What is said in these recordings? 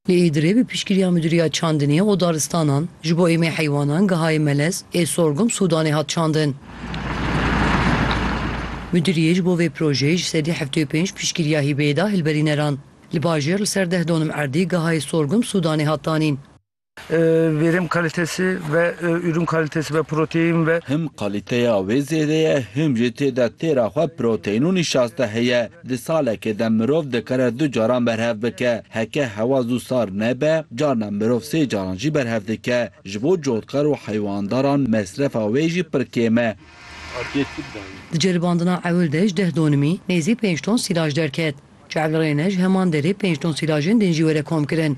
Li Îdirê bi piştgiriya Midûriya Çandinê û Daristanan ji bo Êmê Heywanan Gihayê Melez ê Sorgum Sûdanê hat çandin. Midûriyê ji bo vê projeyê ji sedî heftê û pênc piştgiriya hîbeyê da hilberîneran. Li bajêr li ser deh donim erdî Gihayê Sorgum Sûdanê hat danîn. Vêrêm kalitesi ve ürün kalitesi ve protein ve. Him kaliteya wê zêde ye him jî tê de têra xwe protein û nîşaste heye. Di salekê de mirov dikare du caran berhev bike. Heke hewa zû sar nebe carna mirov sê caran jî berhev dike. Ji bo cotkar û heywandaran mesrefa wê jî pir kêm e. Di ceribandina ewil de ji deh donimî nêzî pênc ton sîlaj derket. Çel rêne ji heman derê pênc ton sîlajên din jî were komkirin.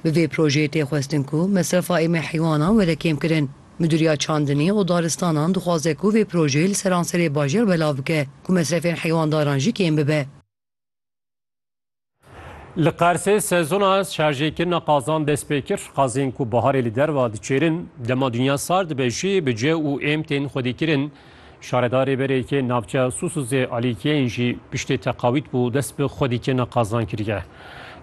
Bi vê projeyê tê xwestin ku mesrefa êmê heywanan were kêmkirin. Midûriya Çandinî û Daristanan dixwaze ku vê projeyê li seranserê bajêr belav bike ku mesrefên heywandaran jî kêm bibe. Li Qersê sezona şarjêkirina qazan dest pê kir. Qazên ku biharê li derve diçêrin, dema dinya sar dibe jî bi cê û êm tên xwedîkirin. Şaredarê Berêkê navçeya Susuzê Alî Kêyn jî piştê teqawît bû dest bi xwedîkirina qazan kiriye.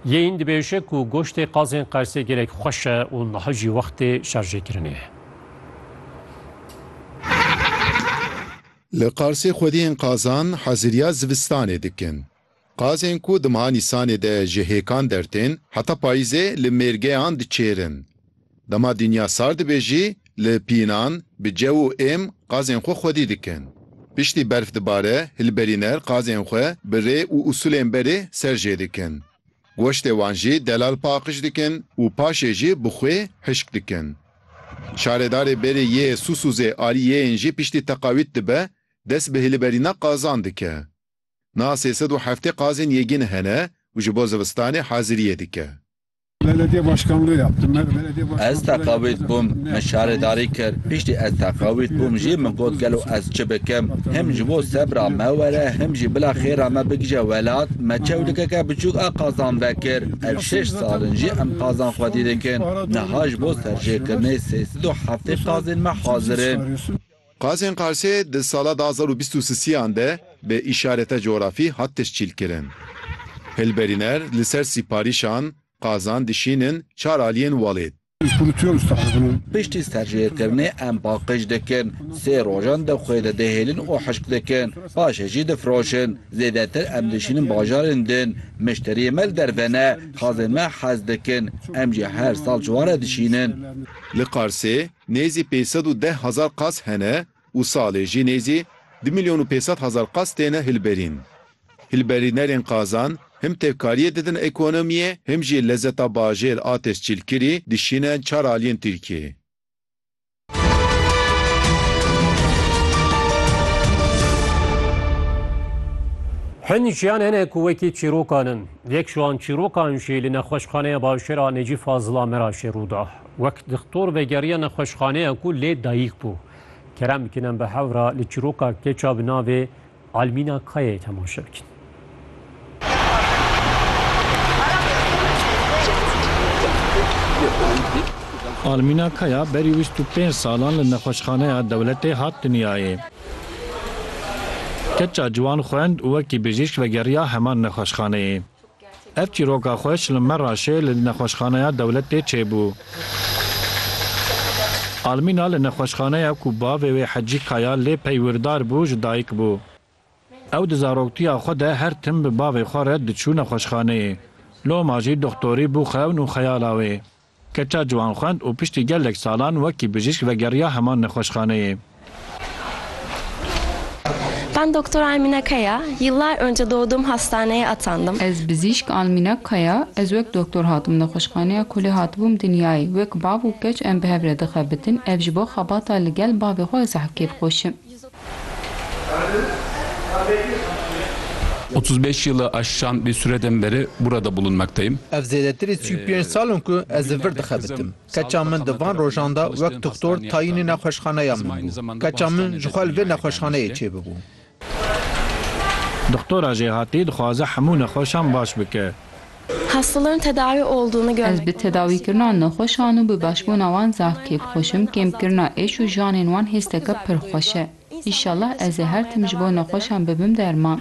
Yêyn dibêje ku goştê qazên Qersê gelek xweş e û niha jî wextê şerjêkirinê ye. Li Qarsê xwediyên qazan heziriya zivistanê dikin. Qazên ku di meha Nîsanê de ji hêkan dertên, heta payîzê li mêrgeyan diçêrin. Dema dinya sar dibe jî li pînan bi cew û êm qazên xwe xwedî dikin. Piştî berf dibare, hilberîner qazên xwe bi rê û usulên berê ser jê dikin. Goştê wan jî delal paqij dikin û paşê jî bi xwê hişk dikin. Şaredarê berê yê Susuzê aliyê yên jî piştî teqawît dibe, dest bi hilberîna qazan dike. Niha sê sed û heftê qazên yêgîn hene û ji bo zivistanê haziriyê dike. Ez teqewît bûm, min şaredarî kir. Piştî ez teqewît bûm jî min got gelo ez çi bikim. Him ji bo sebra me were him jî bila xêra me bigije welat, me çewlikeke biçûk a qazan vekir. Ev şeş sal in jî em qazan xwedî dikin. Niha ji bo serjêkirinê sê sed û heftê qazên me hazir in. Qazên Qarsê di sala du hezar û bîst û sisiyan de bi îşareta cografî hat teşkîlkirin. Hilberîner li ser sîparîşan qazan dişînin çar aliyên welêt. Piştî serjêrkirinê em paqij dikin, sê rojan di xwê de dihêlin û hişk dikin, paşê jî difiroşin. Zêdetir em dişînin bajarên din. Mişteriyên me li derve ne, qazên me hez dikin. Em jî her sal ji wan re dişînin. Li Qarsê Nêzî pênc sed û deh hezar qas hene û salê jî nêzî du milyon û pênc sed hezar qas têne hilberîn. Hilberînerên qazan him tevkariyê didin ekonomiyê him jî lezeta bajêr a tescîlkirî dişîne çar aliyên Tirkiyeyê. Hin jiyan hene ku wekî çîrokan in. Yek ji wan çîrokan jî li nexweşxaneya bajêr a Necî Fazil a Meraşê rû da. Wek dixtor vegeriya nexweşxaneya ku lê dayîk bû. Kerem bikinin bi hev re li çîroka keça bi navê Almîna Kayayê temaşe bikin. Almîna Kaya berî wîst û pênc salan li nexweşxaneya dewletê hat dinyayê. Keça ciwan xwend û wekî bijîşk vegeriya heman nexweşxaneyê. Ev çîroka xweş li Merraşê li nexweşxaneya dewletê çêbû. Almîna li nexweşxaneya ku bavê wê Hecî Kaya lê peywîrdar bû ji dayik bû. Ew di zaroktiya xwe de her tim bi bavê xwe re diçû nexweşxaneyê. Loma jî doxtorî bû xewn û xeyala wê. Keça ciwan xwend û piştî gelek salan wekî bijîşk vegeriya heman nexweşxaneyê. Ben Doktor Almina Kaya, yıllar önce doğdum hastaneye atandım. Ez bijîşk Almina Kaya, ez wek doktor hatim nexweşxaneya ku lê hatibûm dinyayê. Wek bav û keç em bi hev re dixebitin, ev ji bo xebata li gel bavê xwe ez hevkêr xweşim. Otuz beş yılı aşan bir süreden beri burada bulunmaktayım. Ev zêdetirî sî û pênc sal in ku ez li vir dixebitim. Keça min di van rojan de wek dixtor tayînê nexweşxaneya min bû. Keça min ji xwe li vê nexweşxaneyê çêbibû. Dixtora jêhatî dixwaze hemû nexweşan baş bike. Hastaların tedavi olduğunu görmek, Ez bi tedawîkirina nexweşan û bi başbûna wan zaf kêf xweş im, kêmkirina êş û janên wan hêsteke pir xweş e. Înşallah ez ê her tim ji bo nexweşan bibim derman.